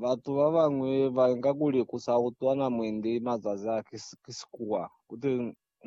Batu babañwi bainga kuli kusautwana mwendi mazazi a ki sikuwa, kuti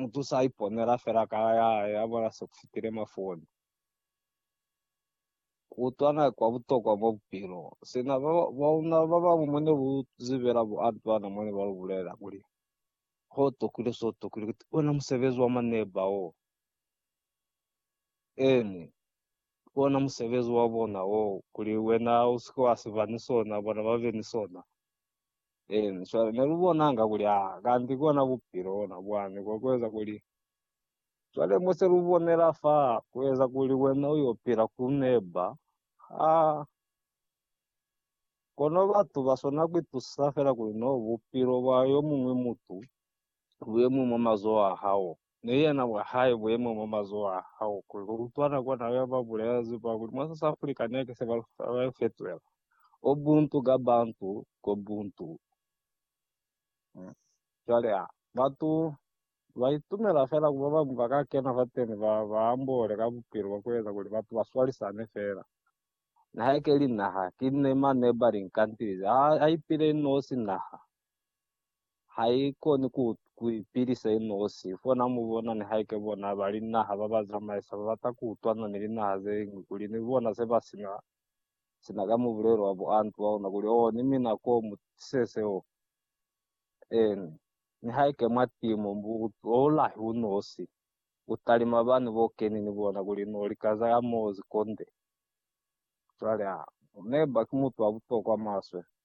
mutu saiponela feela kala yahae yabona sekufitile mafoni. Kuutwana ki kwabutokwa mwa bupilo. Sina bauna babañwi mwene bu zibela bu Antoine mwene balubulela kuli, Kotokile, sotokile, kuti ona musebezi wa maneba wo. Eeni, ki ona musebezi wa bona wo, kuli wena u si ke wa si ba ni sona, bona ba be ni sona. Eeni, cwale ne lu bonanga kuli, Ha, kanti ki ona Bupilo bona, mwani, kwa ku eza kuli, cwale mo se lu bonela fa, ku eza kuli wena u yo pila ku neba. Ha, kono batu ba swana ku itusisa fela kuli no Bupilo bwa yo muñwi mutu bu ye mwi mwa mazoho a hao. ne yena bwa hae bu yeme mwa mazoho a hao kuli lu utwa nako na yo ba bulela zipa kuli mwa South Africa neke se ba lu fetwela Ubuntu ka Bantu ko Buntu. Cwale a batu ba itumela fela ku ba bañwi ba ka kena fateni ba ba ambole ka bupilo bwa ku eza kuli batu ba swalisane fela. Nihaike li naha, ki nema neba li nkantilize. A, a ipile inosi naha. ha i koni ku, ku ipilisa i nosi. Fona mu bona nihaike bona ba linaha ba ba zamaisa ba bata ku utwana ni linaha ze ñwi kuli ni bona se ba sina, sina ka mubulelo wa buantu ba ona, kuli, Oh, ni mina ko, mu tise seo. Eeni. Nihaike mwa timu, mu bulahi u nosi, u talima bani bo keni ni bona, kuli no lika za ka mo zi konde. Cwale, ha, neba ki mutu wa butokwa maswe.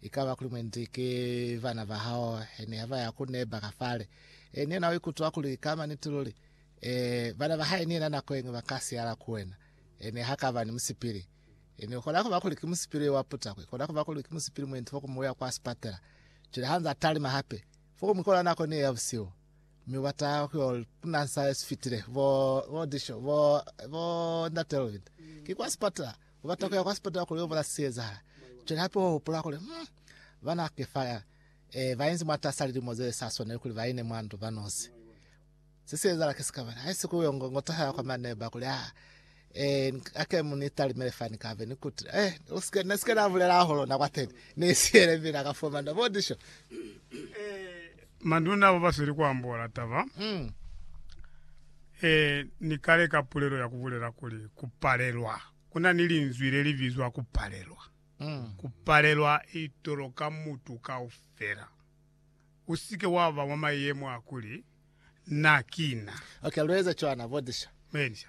Ikaba kuli mwendi ki bana ba hao hene ha ba ya ku neba ka fale, e, ni yena u ikutwa kuli ka maniti luli, e, bana ba hae ni yena nako yeñwi ba ka siyala ku wena, e, ne ha ka ba ni musipili. E, ni kona kuba kuli ki musipili wa puta, ku kona kuba kuli ki musipili mwendi fokumu uya kwa sipatela. Cwale ha nza talima hape, fokumu ikona nako ni ye ya busihu, mi ubata ku yo tuna sa ye sifitile, bo, bo Disho, bo, bo Ndate Elvin, ki kwa sipatela, Ubata kuya kwa sipatala kuli ubona siezahala. Cwale hape uhupula kuli, Hmm, bana Kefaya, eh, bainzi mwatasa lilimo zesa swaneli kuli baine mwandu banosi. Se siezala ki sikabani. Haisi kuli uyo ngo, ngo tahala kwa maneba kuli, Ah, eh, ake mu ni talimele fani kabe, ni kuti, eh, usike, nesike nabulela hahulu na kwateni. Ni siele mina ka fumana bodisho. Manduna abo basweli kuambola taba ye ni kale ka pulelo ya kubulela kuli, Kupalelwa. Kuna ni linzwi le li bizwa kupalelwa. Kupalelwa i toloka mutu kaufela. Usike waba mwa mayemo a kuli, Na ki na. Ok, lueza cwana, Botisha. Botisha.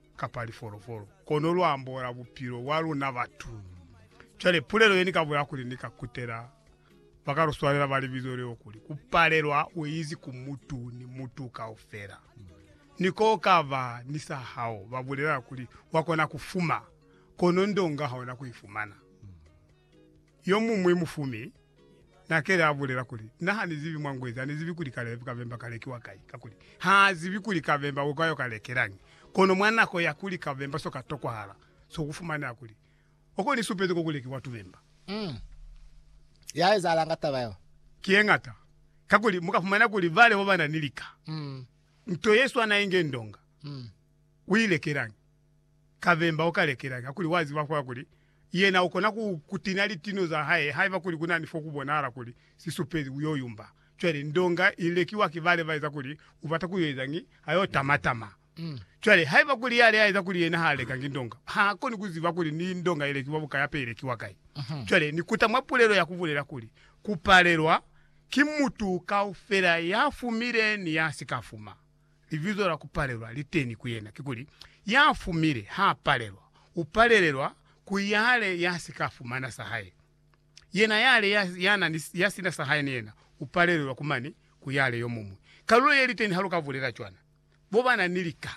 kapa lifolofolo, kono lu ambola bupilo bwa luna batu. Cwale, pulelo ye ni ka bolela kuli ni ka kutela ba ka lu swanela ba libizo leo kuli, ku palelwa u izi ku mutu ni mutu kaufela. Ni ko ka ba ni sa hao, ba bulela kuli, Wa kona ku fuma, kono ndonga ha ona ku i fumana. Yomuñwi mufumi nakeli abulela kuli, Na hanizibi mwa ngwezi, hanizibi kuli kabemba kalekiwa kai, kakuli, haazibi kuli kabemba ukai oka lekelañi. Kono mwa nako ya kuli kabemba soka tokwahala, sokufumaneha kuli, oko nisupezi koku lekiwa tubemba. Mm. Ya ezahalanga ka taba yeo? Ki yeñata. Kakuli mukafumana kuli bale babana ni lika, Mm. nto yeswana inge ndonga, Mm. uilekelañi? Kabemba ukalekelañi hakuli waziba fo hakuli yena ukona kutinya litino zahae haiba kuli kunani fokubonahala kuli sisupezi uyoyumba? Cwale ndonga ilekiwa ki bale baeza kuli ubata kuyoezañi? Ayotamatama. Cwale haiba kuli yale aeza kuli yena haalekangi ndonga, haakoni kuziba kuli ni ndonga ilekiwa buka yape ilekiwa kai. Cwale nikuta mwa pulelo yakubulela kuli, Kupalelwa ki mutu kaufela yafumile ni yasikafuma. Libizo la ku palelwa li teni ku yena. Kikuli, ya fumile ha palelwa. U palelelwa ku yale ya si ka fumana sa hae. Yena yale ya, ya na ni, ya sina sa hae ni yena, u palelelwa ku mane ku yale yo muñwi. Kalulo ye li teni ha lu ka bulela cwana. Bo ba na ni lika.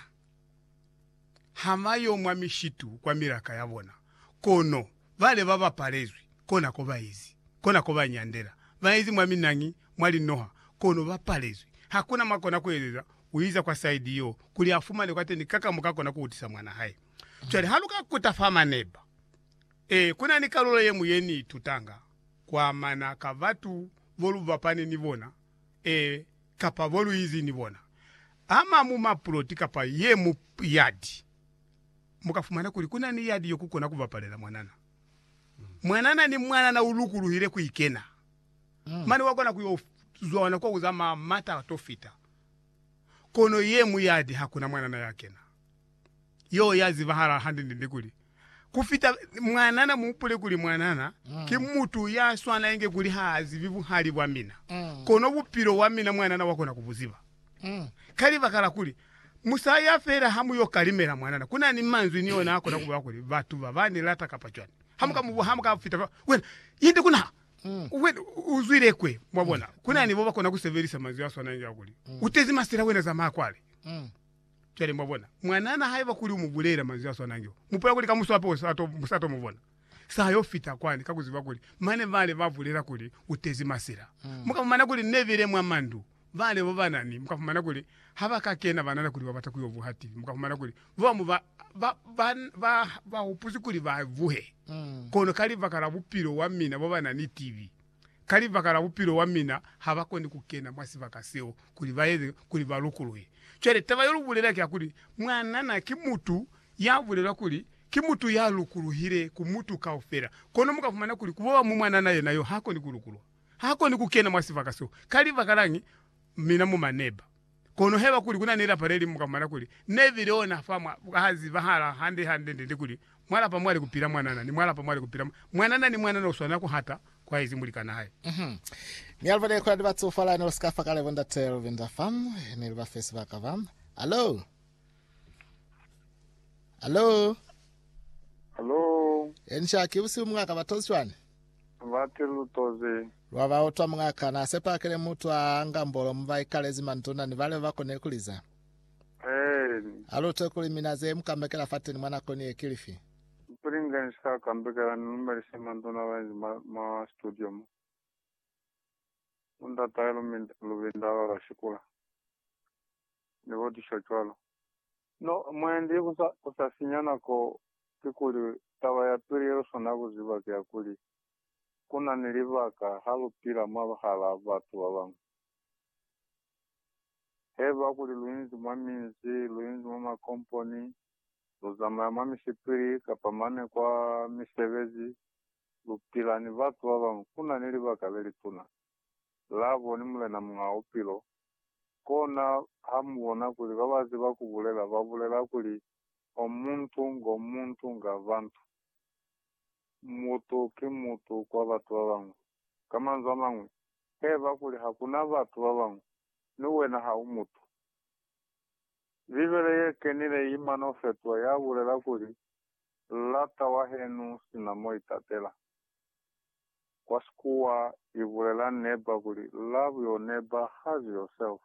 Ha ba yo mwa mishitu kwa milaka ya bona, kono bale ba bapalezwi, kona ko ba ezi, kona ko ba nyandela. Ba ezi mwa minangi, mwa linoha, kono ba palezwi. Ha ku na mwa kona ku ezeza, u iza kwa saidi yo, kuli a fumane kwa teni ka ka mo ka kona ku utisa mwana hae. Cwale ha lu ka kuta fa maneba, ee, ku na ni kalulo ye ñwi ye ni itutanga ku amana ka batu bo lu bapani ni bona, Ee, kapa bo luizi ni bona. Ama mu mapuloti kapa ye mu yadi, mu ka fumana kuli ku na ni yadi yo ku kona ku bapalela mwanana. Mwanana ni mwanana u lukuluhile ku i kena, mane wa kona ku yo zwana kwa ku zamaya mata a to fita. Kono ye mu yadi ha ku na mwanana ya kena. Yo ya zibahala hande-ndende kuli, ku fita mwanana, mu hupule kuli mwanana ki mutu ya swana inge kuli ha zibi buhali bwa mina, kono bupilo bwa mina mwanana wa kona ku bu ziba. Ka libaka la kuli, mu sa ya fela ha mu yo kalimela mwanana. Ku na ni manzwi ni ona a kona ku bula kuli, Batu ba ba ni lata kapa cwani. Ha mu ka mu, ha mu ka fita fa, wena, yende ku na, wena, u zwile kwe. Mwabona? Ku na ni bo ba kona ku sebelisa manzwi a swana inge a kuli, U tezi masela, wena zamaya kwale. Cwale, mwa bona, mwanana haiba kuli u mu bulelela manzwi a swanangi o, mu pula kuli ka muswapo u sa to, sa to mu bona. Sa yo fita kwani, ka ku ziba kuli mane bale ba bulela kuli u tezi masila. Mu ka fumana kuli ne bile mwa mandu, bale bo bana ni, mu ka fumana kuli ha ba ka kena banana kuli ba bata ku yo vuha TV, mu ka fumana kuli bo bamu ba, ba, ba, ba, ba hupuzi kuli ba vuhe. Kono ka libaka la bupilo wa mina bo bana ni TV, ka libaka la bupilo wa mina, ha ba koni ku kena mwa sibaka seo kuli ba eze kuli ba lukuluhe. Cwale taba yo lu bulela ki ya kuli, Mwanana ki mutu ya bulelwa kuli ki mutu ya lukuluhile ku mutu kaufela. Kono mu ka fumana kuli ku boba mo mwanana yena yo ha koni ku lukuluha. Ha koni ku kena mwa sibaka seo. Ka libaka lañi? Mina mu maneba. Kono haiba kuli kuna ni lapa lelimu ka mwana kuli nebi lona fa mwa ha zibahala hande hande nde ni kuli mwa lapa mwali kupila mwanana ni mwa lapa mwali kupila mwanana ni mwanana uswanela kuhata kwaizi mulikana hae. Uhmm mi alibona ye kolani batso fala ne usika fa kale bo ndate Lovinda fa ne liba fesi ba ka ba Hallo Hallo Hallo Enca ki busihu mungaka ba tozi cwani? ba ti lu toze. Lwa ba utwa Muñ'a ka n'a sepa kile mutu a nga mbolo mu ba ikalezi manduna ni bale ba ba koni ku liza. Eeni. A lu utwe kuli mina ze mu kambekela fateni mwa nako ni ye ki lifi. Mpili nge ni si ka kambekela ni lumelise manduna ba inzi mwa, mwa studio mo. Bo ndat'ahe Lubinda ba ba shikula. ni bo disho cwalo. No, mwendi, ku sa, ku sa sinya nako, kikuli, taba ya pili ye lu swanela ku ziba ki ya kuli, ku na ni libaka ha lu pila mwabahala batu ba bañwi. Haiba kuli lu inzi mwa minzi, lu inzi mwa makomponi, lu zamaya mwa misipili, kapa mane kwa misebezi, lu pila ni batu ba bañwi, ku na ni libaka le lituna. labo ni Mulena Muñaa Bupilo, kona ha mu bona kuli ba ba ziba ku bulela ba bulela kuli o muntu ngo muntu nga bantu, mutu ki mutu kwa batu ba bañwi. Ka manzwi a mañwi, heba kuli ha ku na batu ba bañwi, mi wena ha u mutu. Bibele ye kenile i mano fetwa ya bulela kuli, Lata wa henu sina mo itatela. Kwa Sikuwa i bulela neighbor kuli love your neighbor has yourself.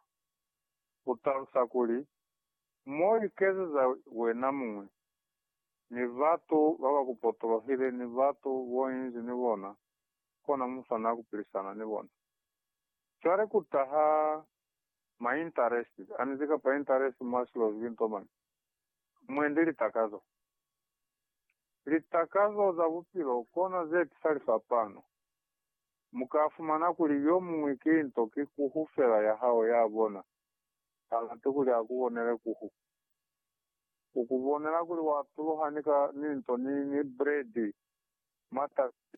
U talusa kuli, mo ikezeza wena muñwi, ni batu ba ba ku potolohile ni batu bo inzi ni bona, kona mu swanela ku pilisana ni bona. Cwale ku taha ma interest a nizi kapa interest mwa silo zibi nto mañi? Mwendi litakazo. Litakazo za bupilo kono ze tisa lifapano. Mu ka fumana kuli yo muñwi ki nto ki kuhu fela ya hao ya bona, ha lati kuli a ku bonele kuhu. U ku bonela kuli wa tuluha ni ka ni nto ni, ni bredi, matasi,